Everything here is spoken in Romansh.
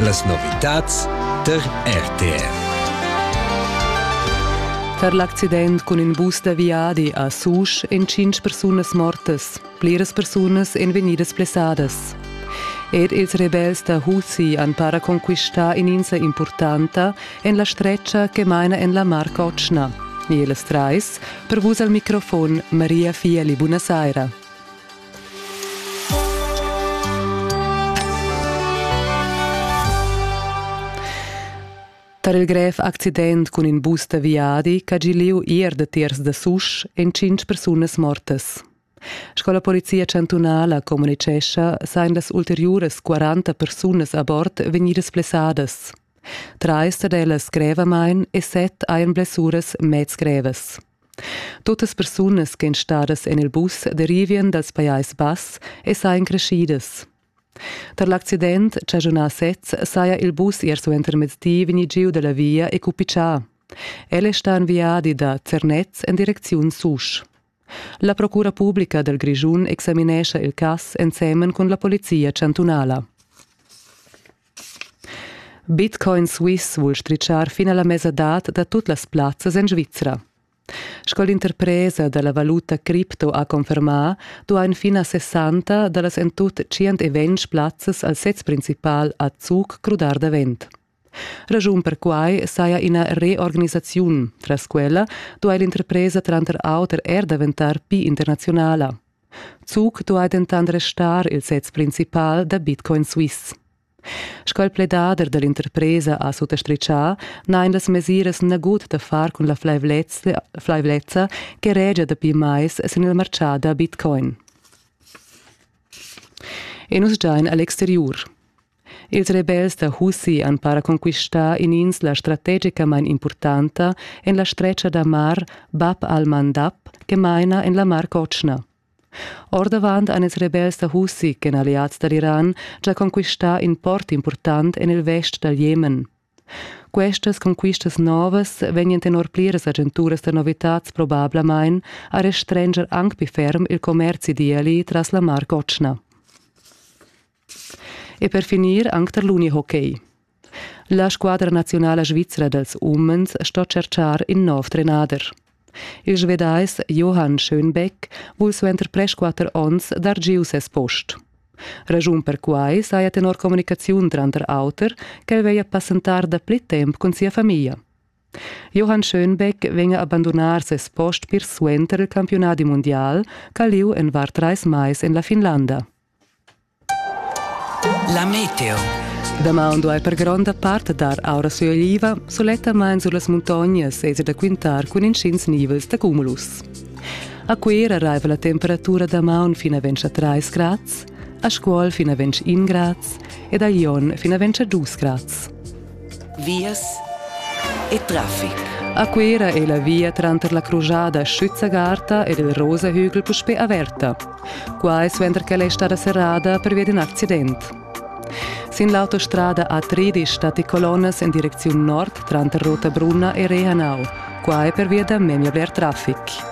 Las novitads tar RTR. Tar l'accident cun in bus da viadi a Susch èn tschintg persunas mortas. Pliras persunas èn vegnidas blessadas. Ed ils rebels da Husi han para conquistà in'insa impurtanta en la stretga che maina en la Mar Cotschna. E las trais, per vus al microfon Maria Fieli, buonasera. Tar il grev accident cun in bus da viadi ch'ha gì lieu ier da tiers da Susch èn tschintg persunas mortas. Sco la polizia chantunala communitgescha, sajan las ulteriuras 40 persunas a bord vegnidas blessadas. Trais dad ellas grevamain e set hajan blessuras mez grevas. Tuttas persunas ch'en stadas en il bus derivien dals Pajais Bass e sajan creschidas. Tar l'accident chaschunà sez saja il bus ier suentermezdi vegni giu da la via e cupichà. El è stà en viadi da Zernez en direcziun Susch. La procura publica dal Grischun examinescha il cass ensemen cun la polizia chantunala. Bitcoin Suisse vul stritschar fin a la mesadad da tut las plazzas en Svizra. Sco l'interpresa da la valuta cripto ha confermà, duain fin a 60 da las en tut 120 plazzas al sez principal a Zug crudar davent. Raschun per quai saja ina reorganisaziun. Tras quella duai l'interpresa tranter auter er daventar pli internaziunala. Zug duai dentant restar il sez principal da Bitcoin Suisse. Sco il pledader da l'interpresa ha suttastritgà, n'hain las mesiras nagut da far cun la flaivlezza che regia dapi mais sin il martgà da Bitcoin. E nus giain a l'exteriur. Ils rebels da Husi han para conquistà in'insla strategicamain impurtanta en la stretga da mar Bab al-Mandab che maina en la Mar Cotschna. Ordavant han ils rebels da Husi, ch'èn alliads da l'Iran, già conquistà in port impurtant en il vest dal Jemen. Questas conquistas novas vegnan tenor pliras agenturas da novitads probablamain a restranger anc pli ferm il commerzi d'eli tras la Mar Cotschna. E per finir anc tar l'unihockey. La squadra naziunala svizra dals umens sto tscherchar in nov trenader. Il Svedais Johan Schönbeck vul suenter presquatter onns dar giu ses post. Ragiun per quai saja tenor communicaziun tranter auter ch'el veglia passentar dapli temp cun sia famiglia. Johann Schönbeck vegna abandonar ses post pir suenter il campiunadi mundial ch'ha lieu en var trais mais en la Finlanda. La meteo. Damaun duai per gronda part dar aura sui oliva, sulettamain sur las muntognas esser da quintar cun intgins nivels da cumulus. A Cuera raiva la temperatura damaun fin a 3 grads, a Scuol fin a 21 grads ed a Lyon fin a 2 grads. vias e traffic. A Cuera è la via tranter la crujada Schützagarta ed il Rosahügel puspè averta. Qua è suenter ch'ella è stada serrada pervia d'in accident. Sin l'autostrada A13 stat i colonnas en direcziun nord tranter Rotabrunna e Rehanau. Qua è pervia da memia bler traffic.